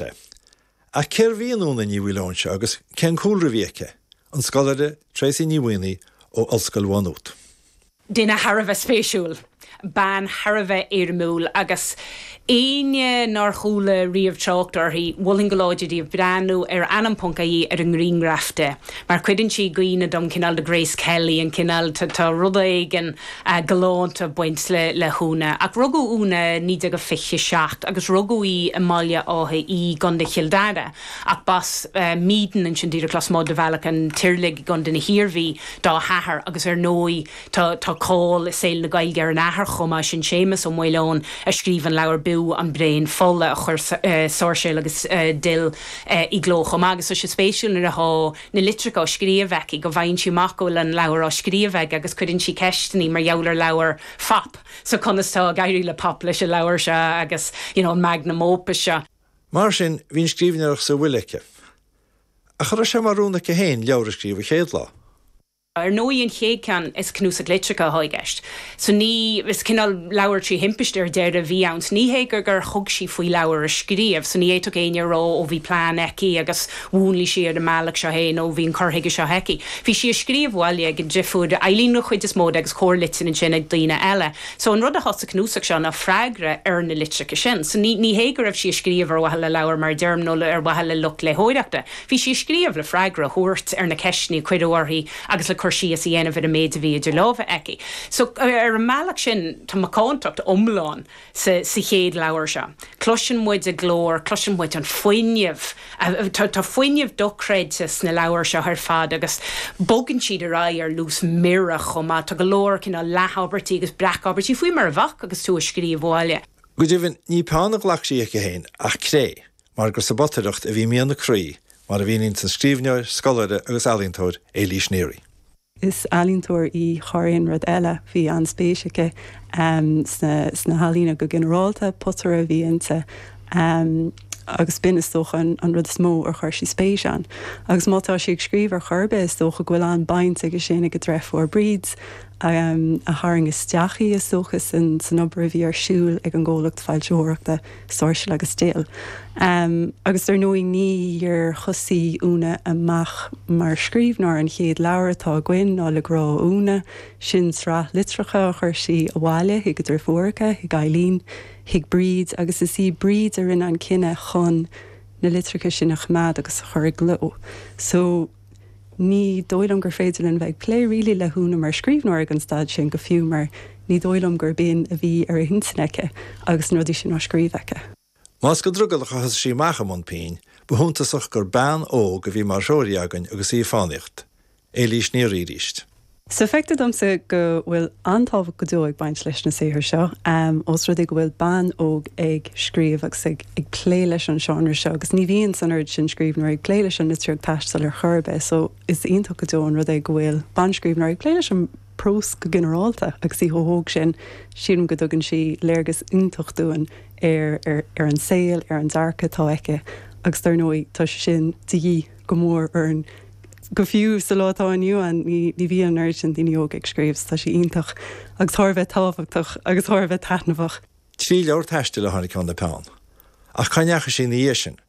sé. Ach cérbh í an Úna Ní Mhaoileoin seo agus cén cúlra a bhí aici? An scoláire Tracey Ní Mhaonaigh ó Ollscoil Mhá Nuad. Duine thar a bheith spéisiúil. Bean thar a bheith éirimiúil agus éinne nár chuala riamh trácht uirthi, mholfainn go láidir daoibh breathnú ar ainm.ie ar an ngrianghraf di mar cuireann sí i gcuimhne dom cineál de Grace Kelly, an cineál, tá rud éigin galánta ag baint le hÚna, ach rugadh Úna 1927 agus rugadh í i mBaile Átha Í, i gContae Chill Dara, ach b'as Meedin, ansin díreach lasmuigh de Bhealach an Tirialaigh i gContae na hIarmhí, dá hathair agus ar ndóigh tá cáil i saol na Gaeilge ar an athair chomh maith, sin Séamus Ó Maoileoin a scríobh an leabhar B'fhiú an Braon Fola a chuir Sáirséal agus Dill i gcló chomh maith. Agus tá sé spéisiúil nuair atá. na litreacha á scríobh aici go bhfaigheann sí amach go bhfuil an leabhar á scríobh aige agus cuireann sí ceisteannaí mar gheall ar leabhar Phop, so conas tá ag éirí le Pop leis an leabhar seo agus you know an magnum opus seo. Mar sin, bhí an scríbhneoireacht sa bhfuil aici. Ach an raibh sé mar rún aici féin leabhar a scríobh an chéad lá? Ar ndóigh an chéad ceann, is cnuasach litreacha atá i gceist. So ní, is cineál leabhar trí thimpiste ar deireadh a bhí ann. So ní hé gur gur thug sí faoi leabhar a scríobh, so ní fhéadfadh éinne a rá ó bhí plean aici agus mhúnlaigh sí ar an mbealach seo é nó bhí an cur chuige seo aici. Bhí sí ag scríobh abhaile ag an driofúr Eileen an chuid is mó de agus corrlitir ansin ag daoine eile. So an rud atá sa cnuasach seo ná freagra ar na litreacha sin. So ní, ní hé go raibh sí ag scríobh ar mhaithe le leabhar mar a deirim nó ar mhaithe le lucht léitheoireachta. Bhí sí ag scríobh le freagra a thabhairt ar na ceisteanna a cuireadh uirthi agus le cur síos a dhéanamh ar an méid a bhí idir lámha aici. So, ar an mbealach sin, tá macántacht iomlán sa chéad leabhar seo. Cloiseann muid a glór, cloiseann muid an fuinneamh. Tá fuinneamh dochreidte sna leabhair seo ar fad agus bogann siad ar aghaidh ar luas mire chomh maith. Tá go leor cineál leathabairtí agus breacabairtí, faoi mar a bheadh agus tú ag scríobh abhaile. Go deimhin, ní peann a ghlac sí aici féin ach cré, mar gur sa bpotaireacht a bhí mian a croí, mar a mhíníonn an scríbhneoir, scoláire agus ealaíontóir, Éilís Neary. Is ealaíontóir í thar aon rud eile. Bhí an-spéis aici sna healaíona go ginearálta, potaire a bhí inti agus b'in, is dócha, an rud is mó ar chuir sí spéis ann. Agus má tá sí ag scríobh ar chor ar bith, is dócha go bhfuil an-bhaint aige sin ag a dreifiúr, Bríd, a tharraing isteach í, is dócha, san obair a bhí ar siúl ag an gcomhlacht foilsitheoireachta. Sáirséal agus Dill. Agus ar ndóigh níor thosaigh Úna amach mar scríbhneoir, an chéad leabhar atá againn, ná Le Grá ó Úna, sin sraith litreacha a chuir sí abhaile chuig a driofúracha, chuig Eileen, chuig Bríd, agus is í Bríd a rinne an cinneadh chun na litreacha sin a choimeád agus a chur i gcló. So. Ní dóigh liom gur féidir linn bheith ag plé really le hÚna mar scríbhneoir ag an staid sin go fiú mar ní dóigh liom gurb shin a bhí ar a hintinn aici agus na rudaí sin á scríobh aici. Más go drogallach a thosaigh sí amach i mbun pinn, ba shuntasach gur bean óg a bhí mar threoraí againn agus í ag fánaíocht. Éilís Ní Fhraoiríst. Sea, feictear domsa go bhfuil an-tábhacht go deo ag baint leis na saothair seo, ós rud é go bhfuil bean óg ag scríobh agus ag plé leis an seánra seo, agus ní bhíonn an oiread sin scríbhneoirí ag plé leis an litríocht taistil ar chor ar bith, só is iontach go deo an rud é go bhfuil banscríbhneoir ag plé leis an bprós go ginearálta agus í chomh hóg sin. Sílim go dtugann sí léargas iontach dúinn ar an saol, ar an dearcadh atá aici, agus dár ndóigh tá sé sin de dhíth go mór orainn Go fiú sa lá atá inniu ann ní bhíonn oiread sin daoine óga ag scríobh is tá sé iontach agus thar a bheith tábhachtach agus thar a bheith taitneamhach. Trí leabhar taistil a tháinig óna peann, ach cá ndeachaigh sí ina dhiaidh sin?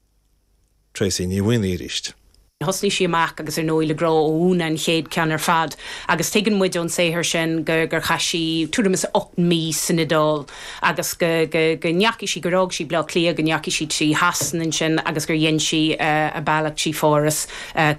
Tracey Ní Mhaonaigh arís. Thosnaigh sí amach agus ar ndóigh le Grá ó Úna an chéad ceann ar fad agus tuigeann muid ón saothar sin gur chaith sí tuairim is ocht mí san Iodáil. agus go ndeachaigh sí, gur fhág sí Baile Átha Cliath, go ndeachaigh sí trí Shasana ansin agus gur dhein sí a bealach trí Pháras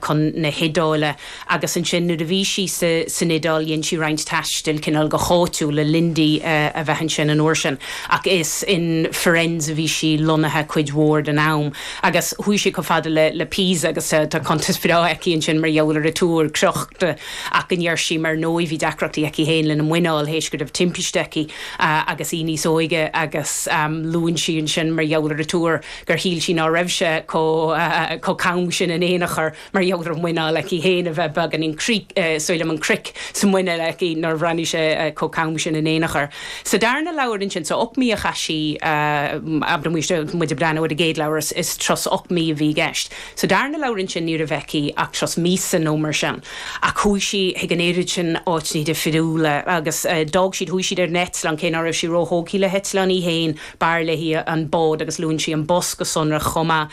chun na hIodáile agus ansin nuair a bhí sí san Iodáil dhein sí roinnt taistil cineál go háitiúil le linn di a bheith ansin an uair sin ach is in Firenze a bhí sí lonnaithe cuid mhór den am agus chuaigh sí chomh fada le Pisa agus tá cuntas breá aici ansin mar gheall ar an túr crochta ach go ndeir sí, ar ndóigh, bhí deacrachtaí aici féin lena muineál tar éis go raibh timpiste aici. agus í níos óige agus luann sí ansin mar gheall ar an túr gur shíl sí ná raibh sé chomh cam sin in aon chor mar gheall ar an muineál aici féin a bheith beagáinín cosúil liom an cric sa muineál aici nár bhreathnaigh sé chomh cam sin in aon chor sa darna leabhar ansin so ocht mí a chaith sí muid ag déanamh ar an gcéad leabhar is trust ocht mí a bhí i gceist. Sa darna leabhar ansin ní raibh aici ach tros míosa nó mar sin ach chuaigh sí chuig an oiread sin áiteanna difriúla agus d'fhág siad, chuaigh siad ar an eitleán, cé ná raibh sí ró-thógtha le heitleáin í féin, b'fhearr léi an bád agus luann sí an bus go sonrach chomh maith.